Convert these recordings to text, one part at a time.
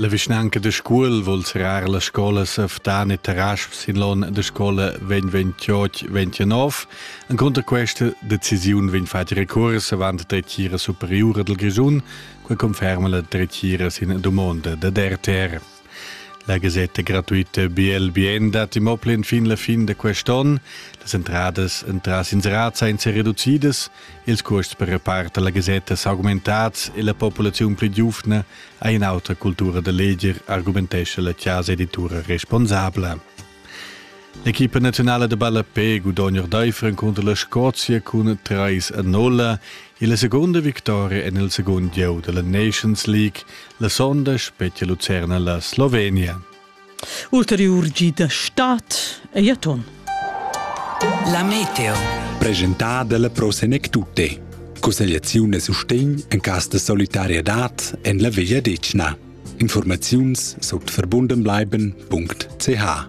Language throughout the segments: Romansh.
La vischnanca da Scuol vul serrar las scolas a Ftan e Tarasp sin l'onn da scola 2028-29. En contra questa decisiun vegn fatg recurs avant la dretgira superiura del Grischun, che conferma la dretgira sin domanda da DRTR. La gasetta gratuita BLBN dat im Oplin fin la fin de quest'onn. Las entradas entras inserats ein reducidas. Ils cuosts per repart alla gasetta s'augmentats e la populaziun pli giuvna Ei in'autra cultura da leger, argumentescha la chasa editura responsabla. L'equipa nazionale de ballapé gudogna ordeifer encunter la Scozia cun 3 a 0 e la seconda victoria en il segon gieu della Nations League la sonda specie Lucerna la Slovenia. Ulteriur gi da stat ei aton. La meteo. Presentada dalla Pro Senec Tutte. Cussegliaziun e sustegn en cas de solidarietad en la Veglia Decna. Informaziuns sut verbundenbleiben.ch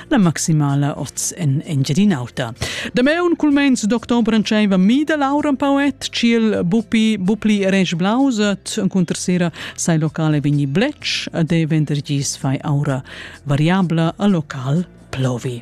la maximala oz en Engiadin'Auta. Dameun cul meins d'october entscheiva mi da Laura un pauet ciel bupi bupli eresch blauset cunter sera sai locale vegni blech de vendergis fai aura variabla a local plovi.